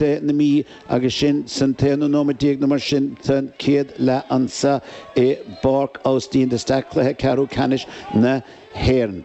de na Mí agus sinn san t-aonú nóimead déag nó mar sin den chéad leath anso i bPáirc Austin de Staic cluiche ceathrú ceannais na hÉireann.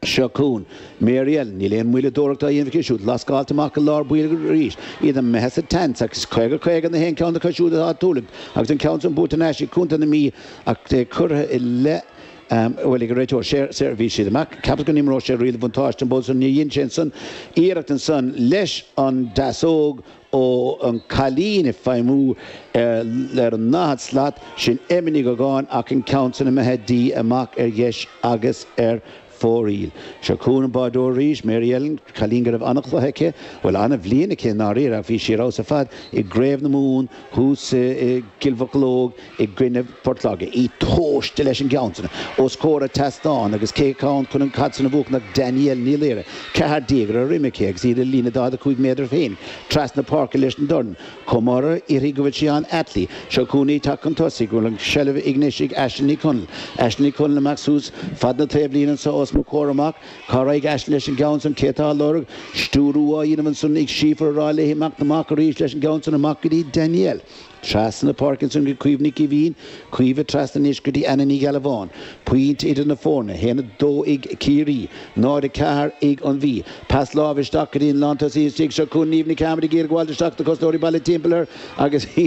Seo chugainn Mary Ellen. Níl aon mhoilleadóireacht á dhéanamh aici siúd. Lascáilt amach go lár baill arís. Iad imithe sa tseans ach is caoga caoga na haon cheann acu siúd atá ag tuirlingt agus an ceann san buaite thar n-ais ag Contae na Mí ach é curtha i leith. Bhuel ag an réiteoir séirbhísí amach cheapas go n-imreodh sé riail an bhuntáiste an babhta so. Níor dhein sé ansan iarracht ansan leis an ndeasóg ó an cailín ag feidhmiú ar an ndaichead slat, sin Emma Ní Dhúgáin ach an ceann san imithe di amach ar dheis agus ar fóraoil. Seo chugainn an báireoir arís, Mary Ellen, cailín go raibh an-chluiche aici, bhuel an-bhliain aici i ndáiríre ach bhí sí ar fheabhas ar fad i gCraobh na Mumhan thuas i gCill Mocheallóg, i gcoinnibh Phort Láirge, í tomhaiste leis an gceann san os comhair an tseastáin agus cé atá ann chun an chaid san a bhuachaint ach Danielle Ní Laoire, ceathair déag ar a droim aici agus í ar a líne daichead a cúig méadar féin trasna páirce leis an dorn. Comhmoradh uirthi go Róisín Ní Rathaille. Seo chugainn í ag teacht chun tosaigh go bhfuil an seilbh anois ag Aisling Ní Chonaill. Aisling Ní Chonaill amach suas fad na taobhlíne anso os mo chomhair amach. Cá raghaidh Aisling leis an gceann san? Cé atá a lorg? Stiúrú á dhéanamh ansan ag Síofra a rá léi imeacht amach arís leis an gceann san amach go dtí Danielle. Trasna na páirce ansan go dtí Caoimhe Nic Eimhín, Caoimhe trasna anois go dtí Anna Ní Ghealbháin. Pointe idir na foirne, 1, 2 ag Ciarraí, 0, 4 ag an Mhí. Pas láimhe isteach go dtí an lántosaí istigh, seo chugainn Niamh Ní Chearmada ag iarraidh gabháil isteach, na cosnóirí bailithe timpeall air agus í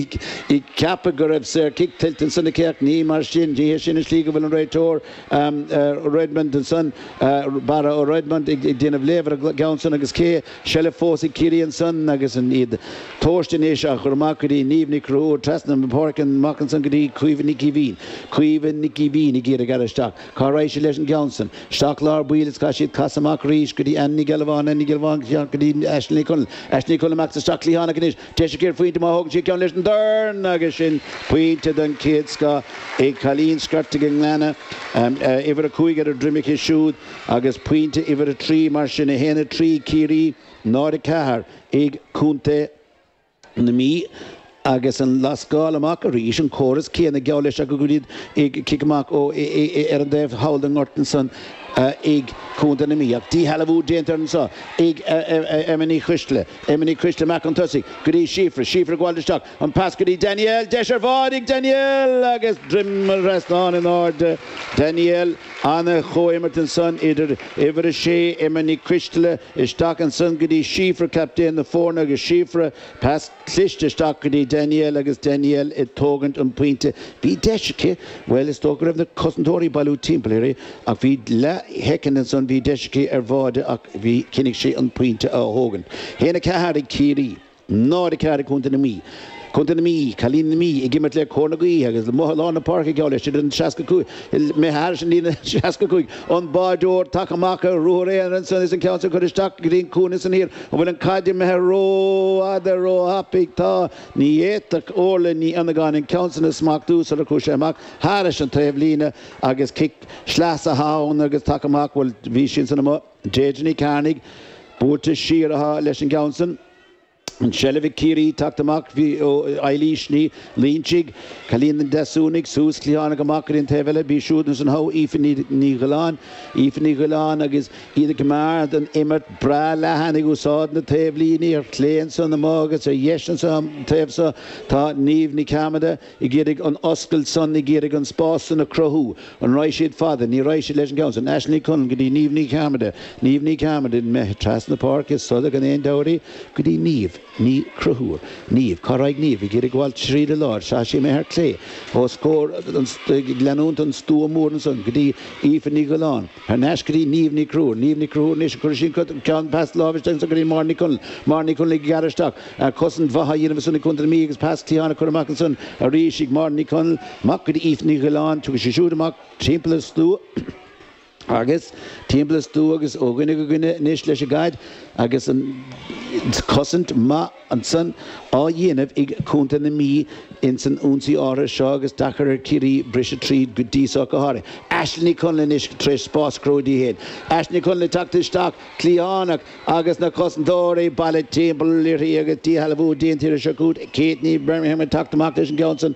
ag ceapadh go raibh saorchic tuillte ansan aici ach ní mar sin, ní hé sin an slí go bhfuil an réiteoir Redmond ansan, Barra O Redmond ag déanamh léamh ar an gceann san agus cé. seilbh fós ag Ciarraí ansan agus iad tomhaiste anois á chur amach go dtí Niamh Ní Chonchúir, trasna an pháirc amach ansan go dtí Caoimhe Nic Eimhín, Caoimhe Nic Eimhín ag iarraidh gearradh isteach, cá raghaidh sí leis an gceann san? Isteach lár baill is caithfidh siad casadh amach arís go dtí Anna Ní Ghealbháin, Anna Ní Ghealbháin go dtí Aisling Ní Chonaill, Aisling Ní Chonaill amach isteach cliathánach anois, deis aici ar phointe má thógann sí an ceann leis an dorn agus sin pointe den chéad scoth ag cailín Scairteach an Ghleanna, uimhir a cúig ar a droim aici siúd. Agus pointe uimhir a trí, mar sin, 1, 3, Ciarraí, 0, 4, ag Contae na Mí agus an lascáil amach arís, an córas céanna, geall leis, ag iad ag cic amach ó ar an dtaobh thall den ngort ansan ag Contae na Mí. Ach díshealbhú déanta anso ag Emma Ní Choisdealbha, Emma Ní Choisdealbha, amach chun tosaigh go dtí Síofra, Síofra ag gabháil isteach, An pas go dtí Danielle, deis ar bháide ag Danielle agus droim an trasnáin in airde. Danielle, ana-chomhimirt ansan idir uimhir a sé Emma Ní Choisdealbha isteach ansan go dtí Síofra captaen na foirne agus Síofra, pas cliste isteach go dtí Danielle agus Danielle ag tógaint an pointe. Bhí deis aici, bhuel is dócha go raibh na cosantóirí ag bailiú timpeall uirthi ach bhí leath shoicind ansan bhí deis aici ar bháide ach bhí, chinnigh sí an pointe a thógaint. Haon a ceathair ag Ciarraí. Náid a ceathair ag Contae na Mí. Contae na Mí, Cailíní na Mí ag imirt le cóir na gaoithe agus amuigh i lár na páirce geall leis iad ar an 65 imithe thairis an líne 65. An báireoir tagtha amach ar ruathar aonair ansan is an ceann seo curtha isteach go dtí an cúinne san thiar. An bhfuil an caid imithe rófhada, róthapaidh? Tá. Ní fhéadfadh Orlaith Ní Fhionnagáin an ceann san a smachtú sular chuaigh sé amach thairis an taobhlíne agus cic sleasa ann agus tagtha amach, bhuel bhí sí ansan amuigh. Deirdre Ní Chearnaigh buailte siar uaithi leis an gceann san. An tseilbh ag Ciarraí tagtha amach ó Eilís Ní Loinsigh. Cailín an Deasúnaigh suas cliathánach amach ar an taobh eile. Bhí siúd ansan ag Aoife Ní Dhioláin. Aoife Ní Dhioláin agus iad ag comeád an imirt breá leathan ag úsáid na taobhlíní. Ar chlé ansan amuigh agus ar dheis anso an taobh so tá Niamh Ní Chearmada. ag iarraidh an oscailt san, ag iarraidh an spás san a chruthú. An raghaidh siad fada, ní raghaidh siad leis an gceann san. Aisling Ní Chonaill go dtí Niamh Ní Chearmada, Niamh Ní Chearmada imithe trasna na páirce, ar sodar gan aon deabhadh uirthi, go dtí Niamh Ní Chonchúir. Niamh, cá raghaidh Niamh? Ag iarraidh gabháil thríd an lár, tá sí imithe ar clé, os comhair an, ag leanúint an stua mór ansan, go dtí Aoife Ní Dhioláin, Anois go dtí Niamh Ní Chonchúir. Niamh Ní Chonchúir anois a chuir sí'n ceann pas láimhe isteach ansan go dtí Máire Ní Chonaill. Máire Ní Chonaill ag gearradh isteach. Ach cosaint mhaith á dhéanamh ansan ag Contae na Mí agus pas cliatháin á chur amach ansan arís ag Máire Ní Chonaill. Amach go dtí Aoife Ní Dhioláin. Tugann sí siúd amach timpeall an stua agus timpeall an stua agus ó dhuine go duine anois leis an gcaid agus an cosaint mhaith. ansan á dhéanamh ag Contae na Mí ins an ionsaí áirithe seo agus deacair ar Chiarraí briseadh tríd go dtí so ach go háirithe. Aisling Ní Chonaill anois tar éis spás a chruthú di féin. Aisling Ní Chonaill ag teacht isteach, cliathánach, agus na cosantóirí bailithe timpeall uirthi agus díshealbhú déanta uirthi. Seo chugat. Katie Bermingham ag teacht amach leis an gceann san.